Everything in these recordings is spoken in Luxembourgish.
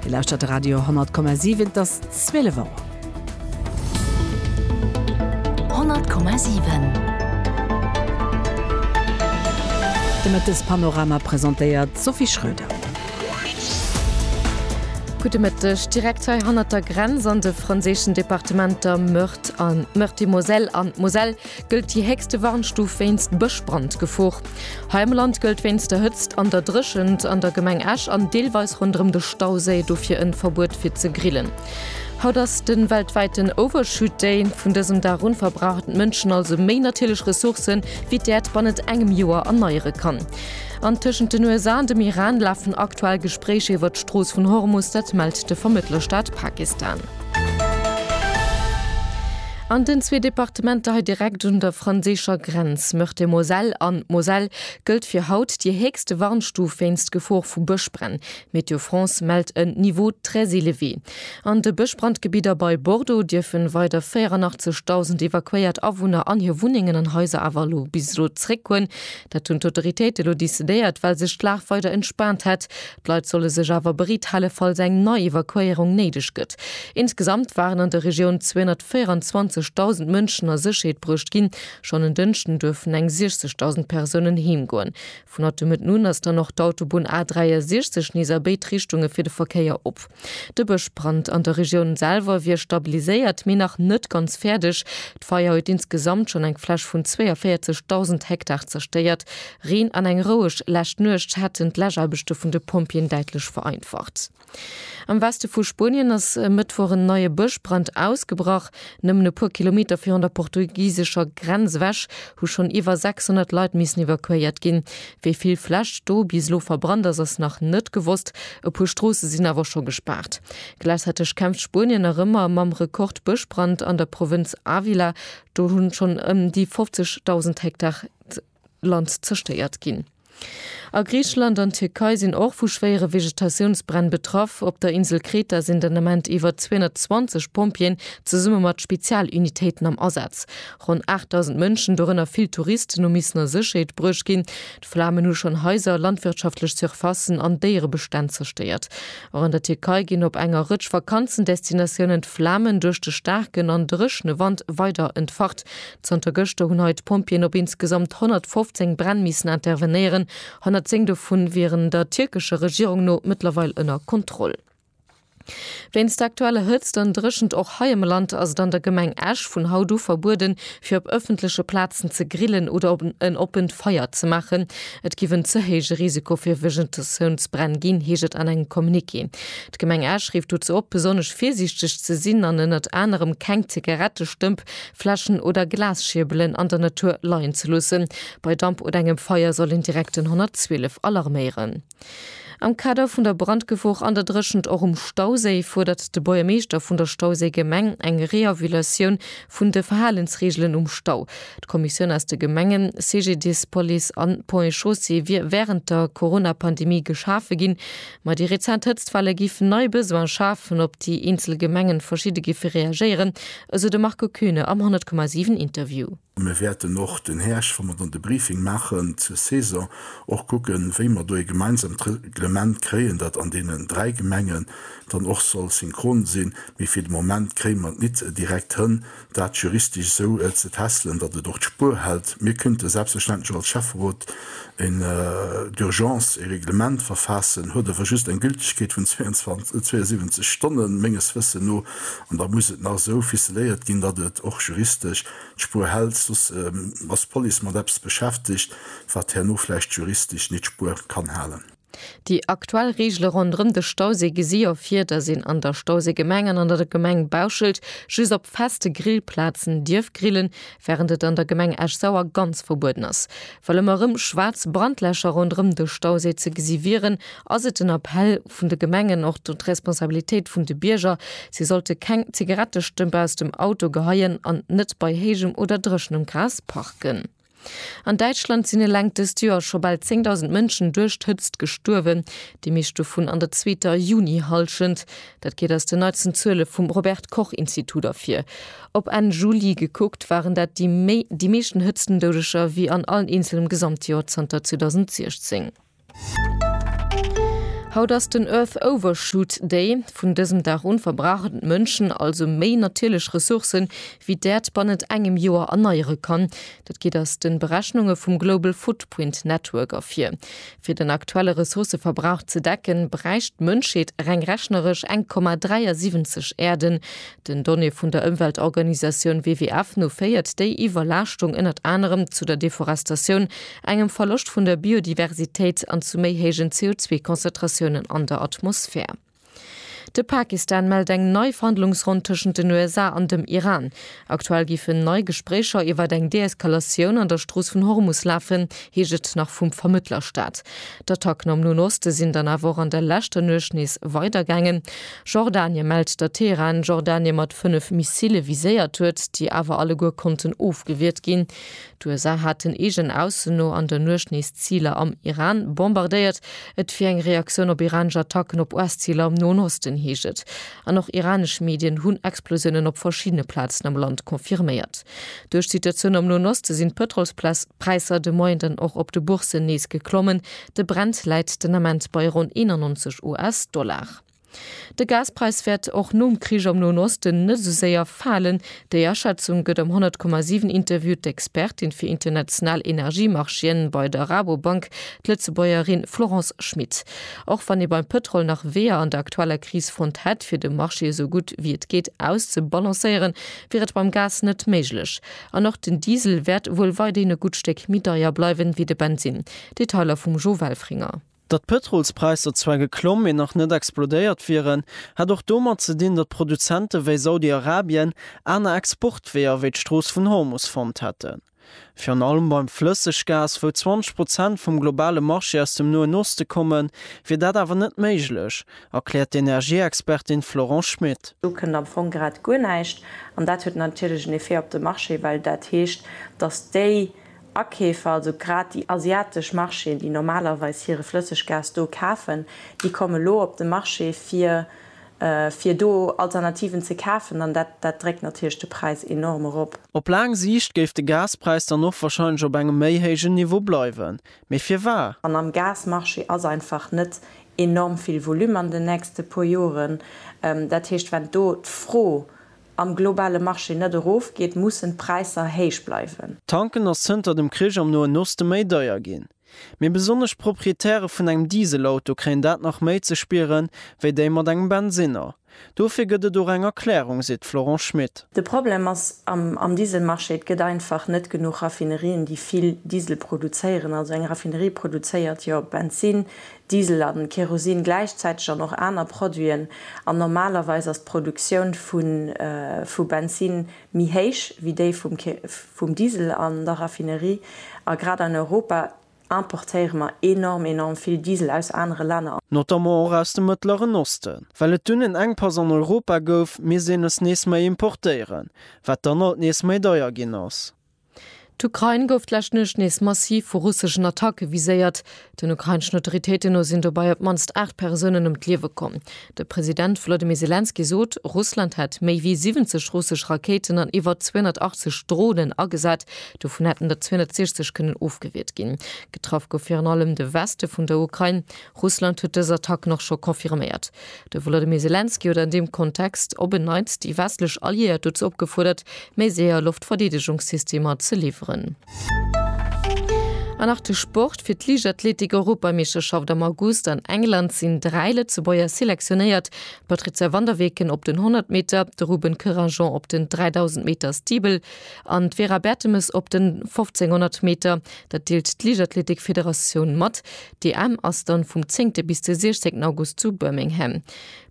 Dir lauschtert de Radio 10,7, et ass 12 Auer. 10,7 De Mëttespanorama presentéiert d'Sophie Schröder. Gudde Mëtteg. Direkt hei hannert der Grenz an de franséischen Departementer Meurthe an Meurthe-et-Moselle an d'Moselle gëllt déi héchste Warnstuf wéinst Bëschbrandgefor. Hei am Land gëllt wéinst der Hëtzt an der Dréchent an der Gemeng Esch an deelweis ronderëm de Stauséi dofir en Verbuet fir ze grillen. Haut ass den weltwäiten Overshoot Day. Vun dësem Dag un verbrauchen d'Mënschen also méi natierlech Ressourcen wéi d'Äerd bannent engem Joer erneieren kann. An tëschent den USA an dem Iran lafen aktuell Gespréicher iwwert d'Strooss vun Hormus, dat mellt de Vermëttlerstaat Pakistan. An den zwee Departementer hei direkt un der franséischer Grenz, Meurthe-et-Moselle an d'Moselle, gëllt fir haut déi héchste Warnstuf wéinst Gefor vu Bëschbränn. Météo France mellt en Niveau très élevé. An de Bëschbrandgebidder bei Bordeaux dierfen weider 84.000 evakuéiert Awunner an hir Wunnengen an Haiser awer elo bis elo zréckgoen. Dat hunn d'Autoritéite elo decidéiert, well sech d'Lag weider entspaant hätt, D'Leit solle sech awer bereet hale falls eng nei Evakuéierung néideg gëtt. Insgesamt waren an der Regioun 224.000 Mënschen a Sécherheet bruecht ginn. Schonn en Dënschden duerfen eng 60.000 Persounen heem goen. Vun haut de Mëtten un ass dann och d'Autobunn A 63 nees a béid Richtunge fir de Verkéier op. De Bëschbrand an der Regioun selwer wier stabiliséiert, mee nach net ganz fäerdeg. D'Feier huet insgesamt schonn eng Fläch vun 42.000 Hektar zerstéiert. Reen an eng roueg lescht Nuecht hätten d'Läschaarbechte vun de Pompjeeën däitlech vereinfacht. Am Weste vu Spuenien ass e Mëttwoch en neie Bëschbrand ausgebrach. Nëmmen e puer Kilometer virun der portugisescher Grenz ewech hu schonn iwwer 600 Leit missen evakuéiert ginn. Wéi vill Fläsch do bis elo verbrannt ass, ass nach net gewosst. E puer Stroosse sinn awer scho gespaart. Gläichzäiteg kämpft Spuenien nach ëmmer mam Rekord-Bëschbrand an der Provënz Ávila. Do hu schonn ëm déi 50.000 Hektar Land zerstéiert ginn. A Griicheland an Tierkei sinn och vu schwéiere Vegetatiounsbränn betraff. Op der Insel Kreta sinn den Ament iwwer 220 Pompjeeën zesumme mat Spezialunitéiten am Asaz. Ronn 8.000 Mënschen, dorënner vill Touristen, hu missen a Sécherheet bruecht ginn. D'Flamen hu schonn Haiser, landwirtschaftlech Surfacen an Déierebestänn zerstéiert. Och an der Tierkei ginn op enger Rëtsch Vakanzendestinatiounen d'Flamen duerch de staarken an dréchne Wand weider entfacht. Zanter gëschter hunn hei d'Pompjeeën op insgesamt 115 Bränn missen intervenéieren. 110 dovun wieren der tierkescher Regierung no mëttlerweil ënner Kontroll. Wéinst der aktueller Hëtzt an Dréchent och hei am Land ass et an der Gemeng Esch vun haut u verbueden, fir op ëffentleche Plazen ze grillen oder en oppent Feier ze maachen. Et giff en ze héije Risiko fir Vegetatiounsbränn ginn, heescht et an engem Communiqué. D'Gemeng Esch rifft dozou op, besonnesch virsiichteg ze sinn an ënnert anerem keng Zigarettestëmp, Fläschen oder Glasschierbelen an der Natur leien ze loossen. Bei Damp oder engem Feier soll een direkt den 112 alarméieren. Am Kader vun der Brandgefor an der Dréchent och um Stauséi fuerdert de Buergermeeschter vun der Stauséi Gemeng eng Reavulatioun vun de Verhalensreegelen um Stau. D'Kommissioun aus de Gemengen, CGDIS, Police an Ponts et Chaussées wier wärend der Corona-Pandemie geschafe ginn, ma déi rezent Hëtztwelle géif nei Besoine schafen, op déi eenzel Gemengen verschidde géife reagéieren, esou de Marco Kuehne am 100,7 Interview. Mir wäerten och den Häerscht, wa mer dann de Briefing maachen zur Saison, och kucken, wéi mer do ee gemeinsamt Reglement kréien, dat an deenen dräi Gemengen dann och soll synchron sinn. Mee fir de Moment kréie mer et nit direkt hënn, dat juristesch esou ze tässelen, datt et och d'Spuer hält. Mir kënnte selbstverständlech och als Schäfferot en d'urgence ee Reglement verfaassen, huet awer just eng Gültegkeet vun 72 Stonnen, menges Wëssen no, an da muss et nach esou ficeléiert ginn, datt et och juristesch, d'Spur hält, soss ass d'Police mat eppes beschäftegt, wat herno vläicht juristesch nit d'Spur kann halen. Déi aktuell Reegele ronderëm de Stauséi gesi jo vir, datt een an der Stauséigemeng an an der Gemeng Bauschelt just op feste Grillplazen dierf grillen, wärend et an der Gemeng Esch-Sauer ganz verbueden ass. Well ëmmer erëm schwaarz Brandlächer ronderëm de Stauséi ze gesi wieren, ass et den Appell, vun de Gemengen och d'Responsabilitéit vun de Bierger, si sollte keng Zigarettestëmp aus dem Auto geheien an net bei héijem oder dréchenem Gras parken. An Däitschland sinn eleng dëst Joer scho bal 10.000 Mënschen duerch d'Hëtzt gestuerwen, déi meescht dovun an der zweeter Junihallschent. Dat geet aus den neitsten Zuele vum Robert-Koch-Institut ervir. Op Enn Juli gekuckt waren dat déi meeschten Hëtztendoudeger wéi an allen eenzelem Gesamtjoer zanter 2016. Haut ass den Earth Overshoot Day. Vun dësem Dag un verbrauchen d'Mënschen also méi natierlech Ressourcen, wéi d'Äerd bannent engem Joer erneiere kann. Dat geet aus de Berechnunge vum Global Footprint Network ervir. Fir den aktuelle Ressourcëverbrauch ze decken, bräicht d'Mënschheet reng rechneresch eng Komma 73 Äerden. Den Donnéeë vun der Ëmweltorganisatioun WWF no féiert déi Iwwerlaaschtung ënnert anerem zu der Deforestatioun, engem Verloscht vun der Biodiversitéit an zu méi héijen CO2-Konzentratiounen an der Atmosphär. De Pakistan mellt eng nei Verhandlungsronn tëschent den USA an dem Iran. Aktuell géifen nei Gespréicher iwwer eng Deeskalatioun an der Strooss vun Hormus lafen, heescht et nach vum Vermëttlerstaat. D'Attacken am Noen Oste sinn dann awer och an der leschter Nuecht nees weidergaangen. Jordanie mellt, datt Teheran Jordanie mat fënnef Missile viséiert huet, déi awer alleguer konnten ofgewiert ginn. D'USA haten eegen Aussen no an der Nuecht nees Ziler am Iran bombardéiert. Et wier eng Reaktioun op iranesch Attacken op US-Ziler am Noen Osten, heescht et. An och iranesch Medien hunn Explosiounen op verschiddene Plazen am Land confirméiert. Duerch d'Situatioun am Noen Oste sinn d'Pëtrolspräisser de Moien dann och op de Bourssen nees geklommen. De Brent läit den Ament bei ronn 91 US-Dollar. De Gaspräis wäert och nom Krich am Noen Osten net esou séier falen. Déi Aschätzung gëtt am 100,7 Interview d'Expertin fir international Energiemarchéen bei der Rabobank, d'Lëtzebuergerin Florence Schmit. Och wann ee beim Pëtrol nach Weeër an der aktueller Kris fonnt hätt, fir de Marché esou gutt wéi et geet auszebalancéieren, wier et beim Gas net méiglech. An och den Diesel wäert wuel weiderhin e gutt Stéck méi deier bleiwen, wéi de Bensinn. Detailer vum Jo Welfringer. Datt d'Pëtrolspräisser zwar geklomm, mee nach net explodéiert wieren, hätt och domat ze dinn, datt Produzente wéi Saudi-Arabien aner Exportweeër wéi d'Strooss vun Hormus fonnt hätten. Virun allem beim Flësseggas, wou 20 Prozent vum globale Marché aus dem Noen Oste kommen, wier dat awer net méiglech, erkläert d'Energieexpertin Florence Schmit. Do kënnt am Fong grad guer näischt. An dat huet natierlech en Effet op de Marché, well dat heescht, datt déi Akeefer, also grad déi asiatesch Marchéen, déi normalerweis hire Flësseggas do kafen, déi komme lo op de Marché fir fir do Alternativen ze kafen an dat dat dréckt natierlech de Präis enorm erop. Op laang Siicht géif de Gaspräis dann och wahrscheinlech op engem méi héijen Niveau bleiwen. Mee firwar? An am Gasmarché ass einfach net enorm vill Volume an den nächste puer Joren. Dat heescht, wenn do d'Fro am globale Marché net erof geet, mussen d'Präisser héich bleiwen. Tanken ass zënter dem Krich am Noen Oste méi deier ginn. Mee besonnesch Proprietäre vun engem Dieselauto kréien dat nach méi ze spieren, wéi déi mat engem Bensinner. Dofir gëtt et och eng Erklärung, seet d'Florence Schmit. De Problem ass am Dieselmarché, et gëtt einfach net genuch Raffinerien, déi vill Diesel produzéieren. Also eng Raffinerie produzéiert jo Bensin, Diesel an Kerosin gläichzäiteg an och aner Produiten, an normalerweis ass d'Produktioun vu Benzin méi héich wéi déi vum Diesel an der Raffinerie, a grad an Europa importéiere mer enorm, enorm vill Diesel aus anere Länner. Notamment och aus dem Mëttleren Osten. Well et dunn en Enkpass an Europa gouf, misst een es nees méi importéieren, wat dann alt nees méi deier ginn ass. D'Ukrain gouf d'lescht Nuecht nees massiv vu russeschen Attacke viséiert. Den ukraineschen Autoritéiten no sinn dobei op d'mannst 8 Persounen ëm d'Liewe komm. De President Wolodymyr Selenskyj sot, Russland hätt méi wéi 70 russesch Rakéiten an iwwer 280 Dronen agesat, dovun hätten der 260 kënnen ofgewiert ginn. Getraff gouf virun allem de Weste vun der Ukrain. Russland huet dës Attacken och scho confirméiert. De Wolodymyr Selenskyj huet an deem Kontext op en Neits déi westlech Alliéiert dozou opgefuerdert, méi séier Loftverdeedegungssystemer ze liwweren. An nach de Sport, Fir d'Liichtathletik-Europameeschterschaft am August an England sinn dräi Lëtzebuerger selektionéiert, d'Patrizia van der Weken op den 100 Meter, de Ruben Couragnon op den 3000 Meter Steeple an d'Vera Bertemes op den 1500 Meter. Dat deelt d'Liichtathletik-Federatioun mat. D'EM ass dann vum zéngte bis de siechzéngten August zu Birmingham.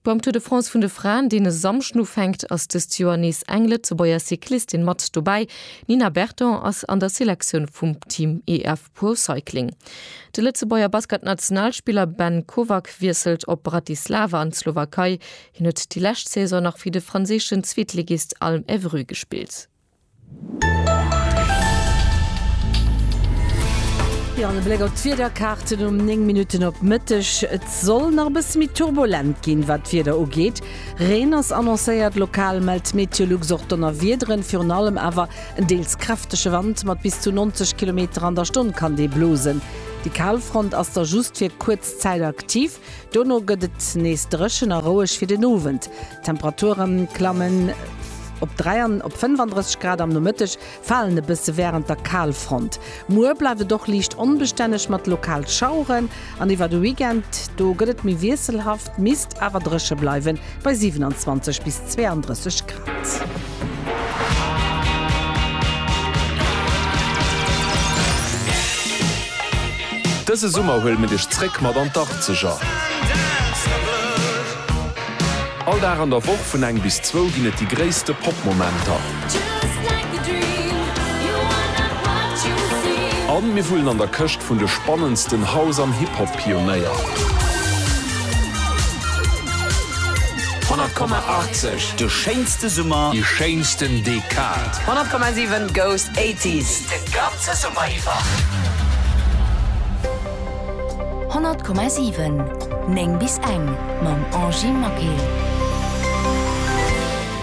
Beim Tour de France vun de Fraen, deen e Samschden ufänkt, ass dëst Joer nees eng Lëtzebuerger Cyclistin mat dobäi. D'Nina Berton ass an der Selektioun vum Team EF Pro Cycling. De Lëtzebuerger Basketnationalspiller Ben Kovac wiesselt op Bratislava an d'Slowakei. Hien huet déi lescht Saison nach fir de franséischen Zweetligist Alm Évreux gespillt. Jo, an e Bléck op d'Wiederkaarten um 9 Minutten op Mëtteg. Et soll nach e bësse méi turbulent ginn, wat d'Wieder ugeet. Reen ass annoncéiert, lokal mellt d'Meteolux och Donnerwiederen. Virun allem awer en deels kräftege Wand mat bis zu 90 Kilometer an der Stonn kann dee blosen. Déi Kalfront ass da just fir kuerz Zäit aktiv. Dono gëtt et nees dréchen a roueg fir den Owend. D'Temperature klammen op 35 Grad. Am Nomëtteg falen e bësse wärend der Kalfront. Muer bleift et och liicht onbestänneg mat lokal Schaueren an iwwer de Weekend do gëtt et méi wiesselhaft, misst awer dréche bleiwen bei 27 bis 32 Grad. Dëse Summer huele mir dech zréck mat an d'Arzeger. All Dag an der Woch vun eng bis zwou ginn et déi gréisste Pop-Momenter. A mir wullen an der Këscht vun de spannendsten House an Hip-Hop. Pionéier. 100,80, De schéinste Summer. Déi schéinsten Dekad. 100,7, Goes 80s, De ganze Summer iwwer. 100,7, 9 bis eng, Mam Angie Maquet.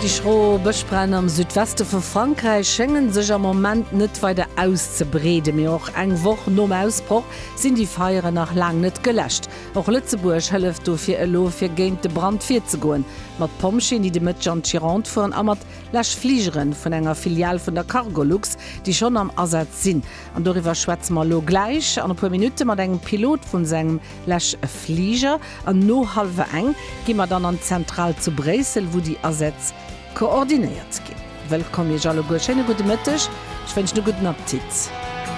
Déi schro Bëschbränn am Südweste vu Frankräich schénge sech am Moment net weider auszebreeden. Mee och eng Woch nom Ausbroch sinn déi Feieren nach laang net geläscht. Och Lëtzebuerg hëlleft dofir elo, fir géint de Brand virzegoen. Mat Pompjeeën, déi de Mëtteg an d'Gironde fueren, a mat Läschfligere vun enger Filial vun der Cargolux, déi schonn am Asaz sinn. An doriwwer schwätze mer elo gläich an e puer Minutte mat engem Pilot vu sou engem Läschfliger. An no hallwer eng gi mer dann an d'Zentral zu Bréissel, wou déi Asätz koordinéiert ginn. Wëllkomm Iech alleguer, schéine gudde Mëtteg, ech wënschen e gudden Appetit.